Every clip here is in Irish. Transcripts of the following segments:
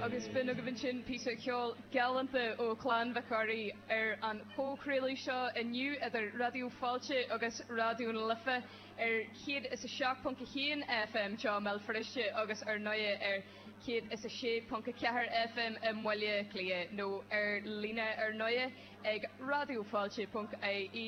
Agus b'in agaibh ansin píosa ceoil galánta ó Chlann Mhic Ruairí ar an chomhchraoladh seo inniu idir Raidió Fáilte agus Raidió na Life ar 107.1 FM i mBéal Feirste agus ar ndóigh ar 106.4 FM i mBaile Átha Cliath nó ar líne ar ndóigh ag raidiofáilte.ie.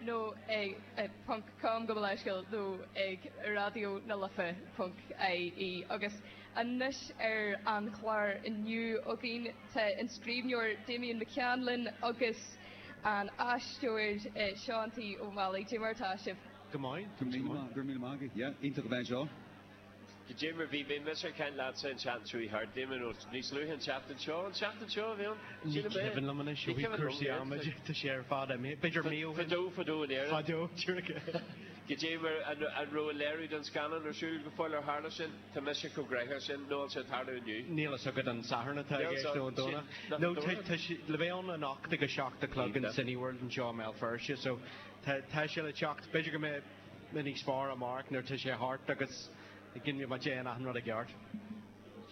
nó ag ponc com go mo leithscéal nó ag raidió na life ponc ie agus anois ar an chlár inniu againn tá an scríbhneoir Damien McCann linn agus an aisteoir Seán T Ó Meallaigh Dé mar atá sibh? Go maith. Go raibh míle maith agat. Go raibh míle maith agat. Yeah, iontach a bheith anseo. Jim, a bhí, bhí mise ag caint leatsa an tseachtain seo, bhí thart, bhí mé nó níos luaithe an tseachtain seo, an tseachtain seo a bhí ann? Ní cuimhin liom anois, bhí cúrsaí ama ag dul sé ar fad, b'fhéidir mí ó shin. Fadó, fadó in Éirinn. Fadó, tíre. Go dtí mar an raibh an léiriú den scannán ar siúl go fóill, ar tharla sin, tá mise chomh gnoitheach sin, nó an sé ag tarlú inniu? Níl fhios agat an Satharn atá i gceist nó an Domhnach? No, tá, tá sé, le bheith ann anocht ag a seacht a chlog in Cineworld anseo i mBéal Feirste, so tá, tá sé le teacht, b'fhéidir go mbeidh, muid níos fearr amárach nuair tá sé thart agus dhéanfaidh muid achan rud i gceart.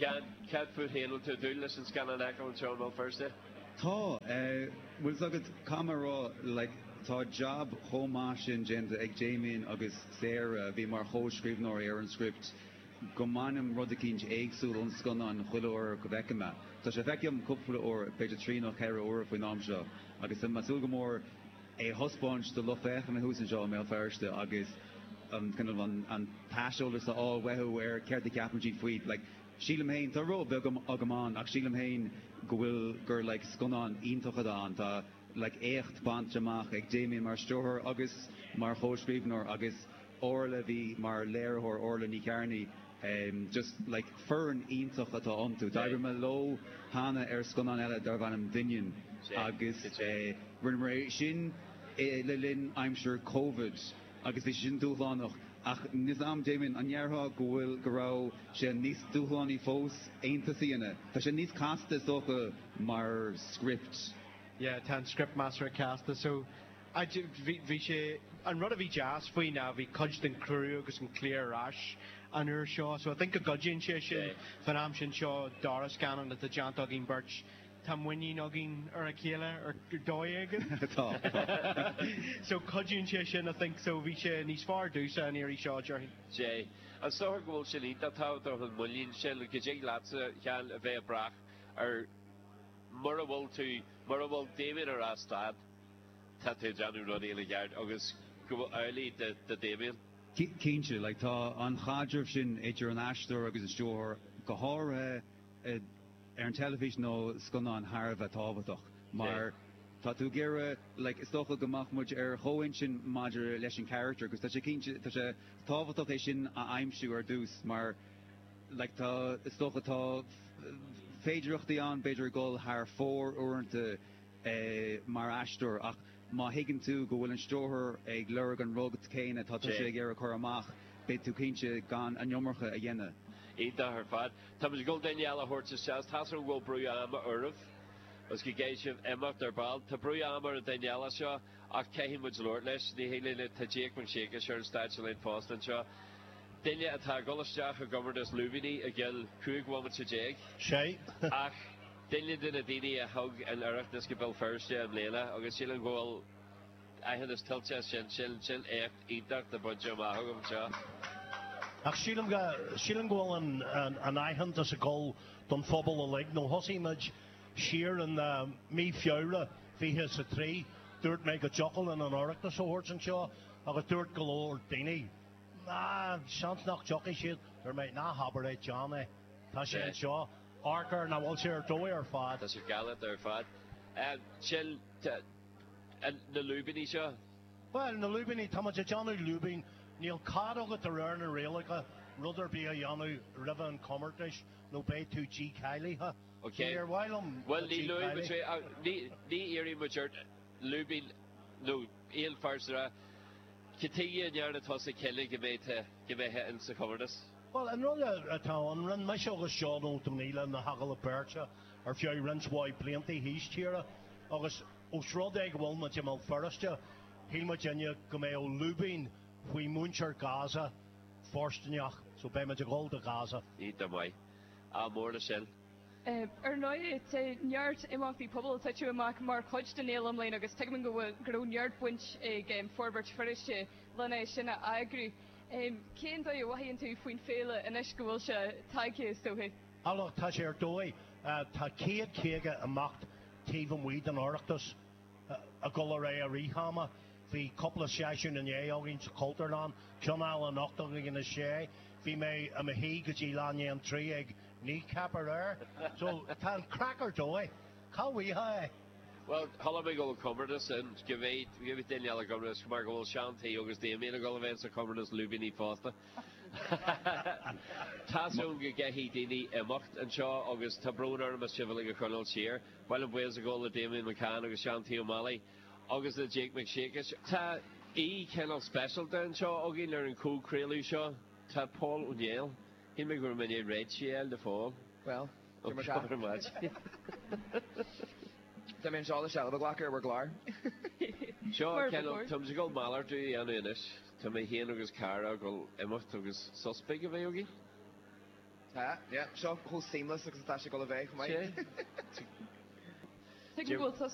Cad, cad fút féin, an bhfuil tú ag dúil leis an scannán a fheiceáil anseo i mBéal Feirste? Tá, bhfuil 's agat, caithfidh mé rá, like, tá jab chomh maith sin déanta ag Damien agus Sarah, a bhí mar chomhscríbhneoirí ar an script, go mbainim rud eicínt éagsúil ón scannán chuile uair go bhfeicim é. Tá sé feicthe agam cúpla uair, b'fhéidir trí nó cheithre uair faoin am seo, agus tá mé ag súil go mór, é a thaispeáint do lucht féachana thuas anseo i mBéal Feirste agus an, kind of, an t-aiseolas a fháil uathu ar céard a cheapann siad faoi, like, sílim féin, tá ról beag agam ann, ach sílim féin go bhfuil, gur, like, scannán iontach atá ann, tá, like, éacht bainte amach ag Damien mar stiúrthóir agus mar chomhscríbhneoir agus, Órla, a bhí mar léiritheoir, Órla Ní Chearnaigh, em just like foireann iontach atá iontu. D'oibrigh mé leo cheana ar scannán eile darb ainm Doineann agus eh rinneamar é sin eh le linn aimsir Covid agus bhí sé sin dúshlánach ach níl a fhios 'am Damien, an ndéarfá go bhfuil, go raibh sé níos dúshlánaí fós Aontas a dhéanamh, tá sé níos casta is dócha mar script? Yeah, tá an script measartha casta so. Bhí sé, an rud a bhí deas faoi ná bhí cuid den chriú agus an cliar ar ais an uair seo so I think go gcuidíonn sé sin. Fán am sin seo dara scannán atá déanta againn beirt, tá muinín againn ar a chéile ar dóigh éigin. Tá, tá. So cuidíonn sé sin I think so bhí sé níos fearr domhsa an iarraidh seo déarfainn. Yeah, An síleann tú go bhfuil sin iontach tábhachtach an muinín sin, go dtig leatsa, Sheáin, a bheith ag brath ar mura bhfuil tú, mura bhfuil Damien ar a stad, tá tú ag déanamh rud éigin i gceart agus gurb amhlaidh do Damien. Cinnte, like, tá an caidreamh sin idir an aisteoir agus an stiúrthóir, go háirithe ar an teilifís nó scannáin, thar a bheith tábhachtach mar tá tú ag iarraidh, like, is dócha go mbeadh muid ar chomhintinn maidir leis an character agus tá sé cinnte, tá sé tábhachtach é sin a aimsiú ar dtús mar, like, tá, is dócha, tá féidireachtaí ann b'fhéidir a dhul thar fóir uaireanta, mar aisteoir ach má thuigeann tú go bhfuil an stiúrthóir ag lorg an rud céanna atá tusa ag iarraidh a chur amach, beidh tú cinnte gan an iomarca a dhéanamh. Iontach ar fad. Táimid ag dul duine eile a thabhairt isteach. Tá's agam go bhfuil brú ama oraibh agus go gcaithfidh sibh imeacht ar ball. Tá brú ama ar an duine eile seo ach caithfidh muid labhairt leis. Ní thig linn, tá Jake Mac Siacais ar an stáitse linn fosta anseo. Duine atá ag dul isteach i gcomórtas lúibíní i gcionn 15 bhomaite. Sea. Ach. Duine de na daoine a thug an Oireachtas go Béal Feirste i mbliana agus sílim go bhfuil aitheantas tuillte as sin, sin, sin éacht iontach atá bainte amach agaibh anseo. Ach sílim go, sílim go bhfuil an, an, an aitheantas ag dul don phobal uilig. Nó thosaigh muid siar in, eh, mí Feabhra 23, dúirt mé go dtiocfadh linn an Oireachtas a thabhairt anseo agus dúirt go leor daoine, Ná, seans nach dtiocfaidh siad. Dúirt mé, Ná habair é, déan é, tá sé anseo. amharc air nach bhfuil sé ar dóigh ar fad. Tá sé galánta ar fad. Sin na lúibíní seo. Bhuel, na lúibíní, tá muid ag déanamh lúibín. Níl cead agat de réir na rialacha rud ar bith a dhéanamh roimhe an chomórtais nó beidh tú dícháilithe. Ok. Níor mhaith liom a Bhuel, linn thú a dhícháiliú, so ní iarrfaidh muid ort lúibín nó aon véarsa a rá. Cad chuige a ndearna tusa cinneadh go mbeidh tú, go mbeidh tú insa chomórtas? Bhuel, an rud atá ann, rinne mise agus Seán Ó Donnghaile na hagallaimh beirte ar feadh roinnt mhaith blianta thíos tíre agus ós rud é go bhfuil muid i mBéal Feirste, shíl muid inniu go mbeadh lúibín faoi mhuintir Gaza fóirstineach, so beidh muid ag dhul do Ghaza. Ní diomaí. Ádh mór le sin. Ar ndóigh, tá neart imeachtaí pobail ag titim amach mar chuid den fhéile i mbliana agus tuigim go raibh neart baint ag Forbairt Feirste lena sin a eagrú. Cén dóigh a mhothaíonn tú faoin féile anois go bhfuil sé tagtha, is dóiche? Ach tá sé ar dóigh. Tá céad caoga imeacht taobh amuigh den Oireachtas ag dul ar aghaidh i rith ama. Bhí cúpla seisiún inné againn sa Chultúrlann, ceann eile anocht againn in a sé. Bhí mé i mo shuí go dtí leath i Bhuel, chuala mé go bhfuil comórtas ann. Go mbeidh, go mbeidh duine eile ag imirt is mar go bhfuil Seán T. agus Damien ag dul a bheith sa chomórtas Lúibíní fosta. Tá's agam go gcaithfidh daoine imeacht anseo agus tá brón orm as sibh uilig a choinneáil siar. Gabhaim buíochas le Damien McCann agus Seán T. Ó Meallaigh agus le Jake Mac Siacais. Tá aoi cineál speisialta anseo againn ar an chomhchraoladh seo. Tá Pól Ó Néill. Shíl mé go raibh mé in ann réidhtigh a fháil de Phól. Bhuel. Tá mé anseo le seilbh a ghlacadh ar bhur gclár. So táim ag dul malartú a dhéanamh anois. Tá mé féin agus Cara ag dul imeacht agus sos beag a bheith againn. Tá, yeah. So chomh seamless agus atá sé ag dul a bheith chomh maith. Tuigim go bhfuil sos.